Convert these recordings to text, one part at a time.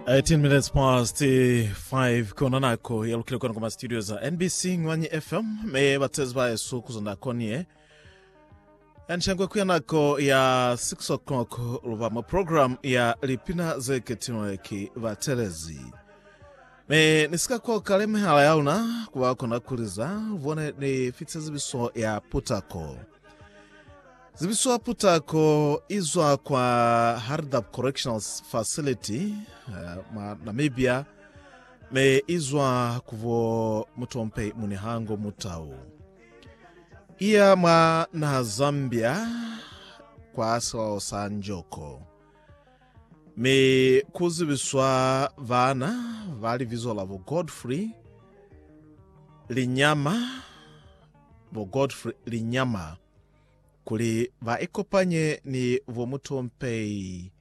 18 minutes past 5 kona nako yalukile kona kuma studio za nbc ngwanyi fm me batsezi ba yesu kuzonda konie anshangwe kuya nako ya 6 o'clock luba mu program ya lipina zeketinwe ki batelezi me nisika ko kale mehala ya luna kuba kona kuliza vone ni fitse zibiso ya putako Zibiso ya putako i zwa kwa Hardap Correctional Facility eh, mwa Namibia me i zwa kubo mutompe munihango mutau iya mwa naha Zambia kwa silao sa Njoko me kuzibiswa bana ba libizo labo Godfrey Linyama bo Godfrey Linyama kuli ba ikopanye ni bo Mutompei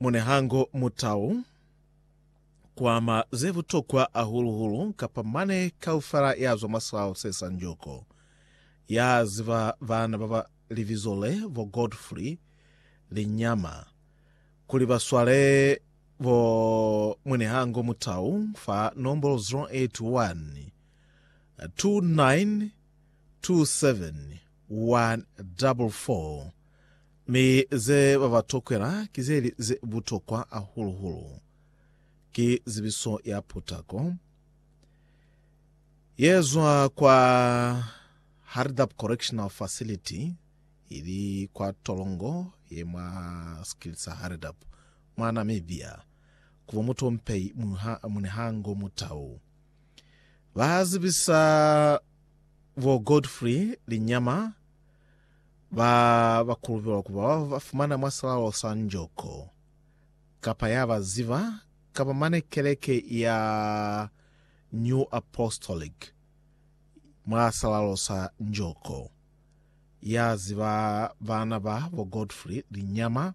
Munehango Mutau kuama ze butokwa hahulu-hulu kapa mane kaufela ya zwa mwa silao se sa Njoko. Ya ziba bana ba ba libizo le bo Godfrey Linyama kuli ba swale Bo Munehango Mutau fa nombolo 0812927144 mi ze ba ba tokwela ki ze li ze butokwa hahulu-hulu ki zibiso ya putako ye zwa kwa Haridap Correctional Facility ili kwa tolongo ye mwa sikili sa Haridap mwa Namibia, kuba mutompeyi mu ha mune ha ngo mutau. Ba ha zibisa bo Godfrey Linyama ba ba kulubelwa kuba ba ba fumana mwa salalo sa njoko, kapa ya ba ziba, kapa mane keleke ya New Apostolic mwa salalo sa njoko. Ya ziba bana ba bo Godfrey Linyama,